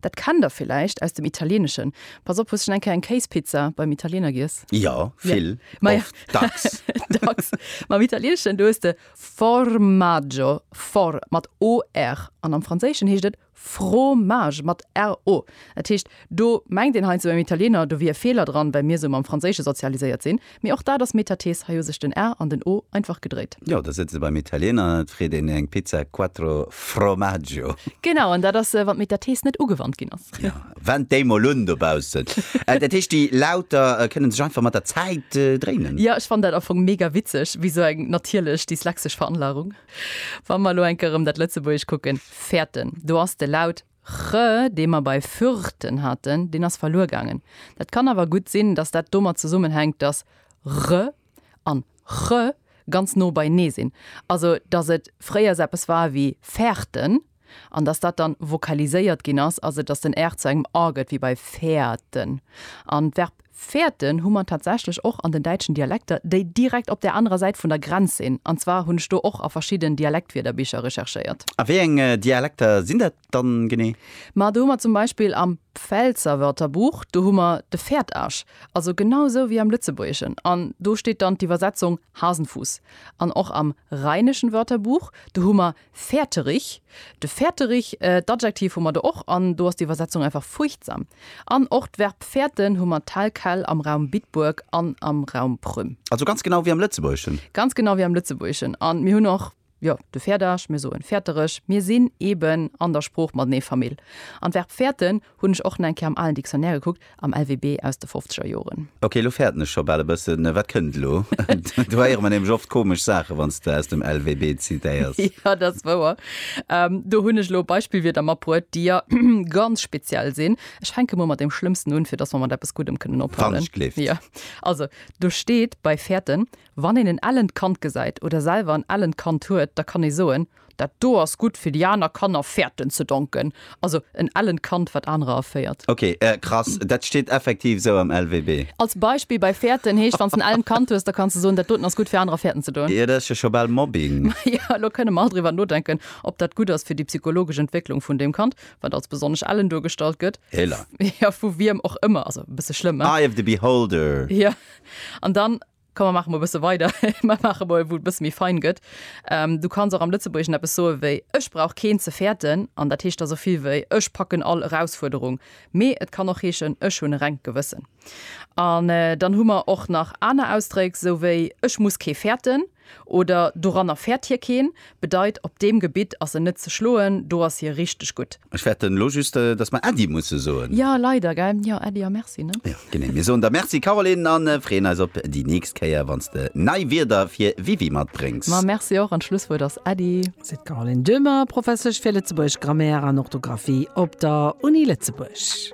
Dat kennt der villäicht aus dem Italieneschen. Pass op, hues schonn eng Kéier eng Kéispizza beim Italiener giess? Jo, vill, Ma ja. oft, dacks. Dacks. Ma am Italieneschen, do hues de Formaggio, for mat OR, an am Franséischen heescht et Fromage mat RO. Dat heescht, do mengt een heiansdo beim Italiener, do wier e Feeler dran, well mir esou mam Franséische sozialiséiert sinn. Mee och dat ass Metathese, hei hu sech den 'r' an den 'o' einfach gedréit. Jo, da sëtzt ee beim Italiener an et freet een eng Pizza Quattro Formaggio. Genau, an dat ass, wann d'Metathese net ugewannt ginn ass. Jo, wend déi mol un dobaussen. Dat heescht, déi Lauter kënnen sech einfach mat der Zäit dréinen? Jo, ech fannen dat am Fong mega witzeg, wéi esou eng natierlech dyslexisch Veranlagung. Wa mer elo enke rëm dat Lëtzebuergesch kucken, fäerten, do ass de Laut Re, dee mer bei Fürten haten, deen ass verluer gaangen. Dat kann awer gutt sinn, dass dat domat zesummenhänkt, dass re an che ganz no beienee sinn, also dass et fréiers eppes war wéi Fährten an dass dat dann vokaliséiert ginn ass, also dass den r zu engem a gëtt, wéi bei Fährten. An d'Verb Fäerten hu mer tatsächlech och an den däitschen Dialekter, déi direkt op där anerer Säit vun der Grenz sinn. An zwar hunn ech do och a verschidden Dialektwierderbicher recherchéiert. A wéi eng Dialekter sinn dat dann genee? Ma do hu mer zum Beispill am Pfälzer Wörterbuch, do hu mer de Fäertasch, also genau esou wéi am Lëtzebuergeschen, an do steet dann d'Iwwersetzung Hasenfuss. An och am Rheinischen Wörterbuch, do hu mer Fäerterich, de Fäerterich, d'Adjektiv hu mer do och, an do ass d'Iwwersetzung einfach fuerchtsam. An och d'Verb fäerten hu mer tel quel am Raum Bitburg an am Raum Prüm. Also ganz genau wéi am Lëtzebuergeschen? Ganz genau wéi am Lëtzebuergeschen. An mir hunn och, jo, de Fäerdach, mir soen Fäerterech. Mir sinn eeben an der Sprooch matenee Famill. An d'Verb fäerten Hunn ech och na eng Kéier am alen Dictionnaire gekuckt, am LWB aus de fofzeger Joren. Ok, lo fäerten ech scho bal e bëssen. Wat kënnt elo? Do héiere mer nämlech oft komesch Saachen, wann s de aus dem LWB zitéiers. Jo, dat ass wouer. Do hunn ech elo Beispillwierder matbruet, déi jo ganz speziell sinn. Ech fänke mol mat deem Schlëmmsten un, fir dass mer mat eppes Guddem kënnen ophalen. Wann ech gleeft. Jo. Also, do steet bei fäerten, Wann een en ellent Kand gesäit oder selwer en ellent Kand huet, da kann ee soen, Dat do ass gutt fir déi aner Kanner Fährten ze donken, also en ellent Kand wat anerer erféiert. Ok, krass, dat steet effektiv esou am LWB. Als Beispill bei Fährten heescht, wann s en ellent Kand hues, da kanns de soen, dat doten ass gutt fir anerer Fährten ze doen. Jo, dat ass jo scho bal Mobbing. Maja, elo kënne mer all driwwer nodenken, ob dat gutt ass fir déi psychologesch Entwécklung vun deem Kand, wat als besonnesch ellen duergestallt gëtt. Héla. Jo, vu wiem och ëmmer, also e bësse schlëmm, hein? Eye of the beholder. Jo, an dann. Komm mer maache mol e bësse weider, mer maache mol, wou et e bësse méi fein gëtt. Du kanns och am Lëtzebuergeschen eppes soe wéi Ech brauch keen ze fäerten. An dat heescht da sou vill wéi Ech packen all Erausfuerderung. Mee et kann och heeschen Ech hunn e rengt Gewëssen. An dann hu mer och nach aner Ausdréck, sou wéi Ech muss kee fäerten oder Doranner fäert hie keen. bedeit op deem Gebitt ass en net ze schloen, do ass hie richteg gutt. Ech fäerten elo just, dass mer Äddi musse soen. Jo, leider, gell? Jo, Äddi a Merci, ne? Jo, genee. Mir soen der Merci, Caroline, a freeën eis op déi nächst Kéier, wann s de nei Wierder fir Wiwi matbréngs. Ma Merci och, an d'Schlusswuert ass Äddi. Seet d'Caroline Döhmer, Professesch fir Lëtzebuergesch, Grammaire an Orthografie op der Uni Lëtzebuerg.